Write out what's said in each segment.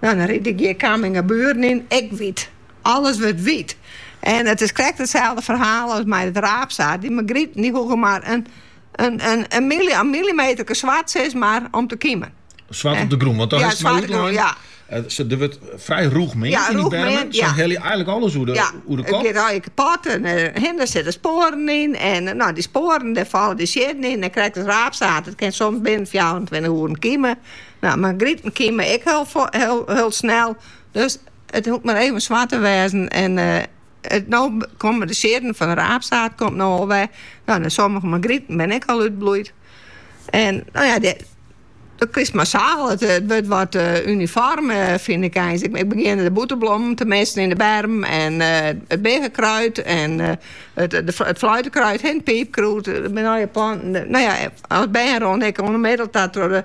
No, dan ride ik hjir Camminghaburen yn. Ek wyt. Alles wurdt wyt. En it is krekt itselde ferhaal as mei it raapsaad. Dy margryt dy hoege mar in millimeterke swart sis mar om te kimen. Swart op de grûn, want dan is it mar útlein. Ja. Eh, der wurdt frij rûch meand yn dy bermen. Ja. Sa helje je eigenlik alles oer de, ja, oer de kop. Ja, kapot en eh, der sitte spoaren yn. En eh, no, dy spoaren, dêr falle de siedden yn. En krekt it raapsaad. It kin soms binnen 24 oeren kime. No, margriten kime ek hiel snel. Dus it hoecht mar even swart te wêzen. En it no komme de siedden fan de raapsaad komt no al wer. No, de sommige margriten bin ek al útbloeid. En no ja, de, dan krijst massaal. It, it wurdt wat uh, unifoarm, uh, fyn ik eins. Ik, ik begjin de bûterblommen te missen yn de berm. En uh, it biggekruid en uh, it, de, it fluitekruid en piipkrûd. No ja, planten. No ja, as bern rûn ik onmiddel dat door de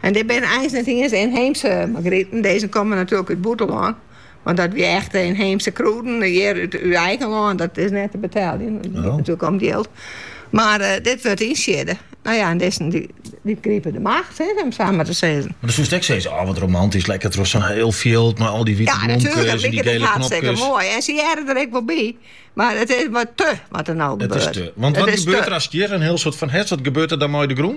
En dit binne eins net iens ynheemse margriten. Dizze komme natuerlik út it bûtenlân. Want dat wie echt ynheemse krûden hjir út eigen lân. Dat is net te beteljen. Dat giet natuerlik om it jild. Mar dit wurdt ynsiedde. No ja, en dizzen dy gripe de macht, om it sa mar te sizzen. Mar dan soest ek sizze, oh wat romantysk, lekker troch sa'n hiel fjild mei al dy wite blomkes en dy gele knopkes. Ja, natuerlik, dan liket it hartstikke moai. En se hearre der ek wol by. Mar it is wat te, wat der no gebeurt. It is te. Want wat gebeurt der ast hjir in hiel soad fan hest? Wat gebeurt der dan mei de grûn?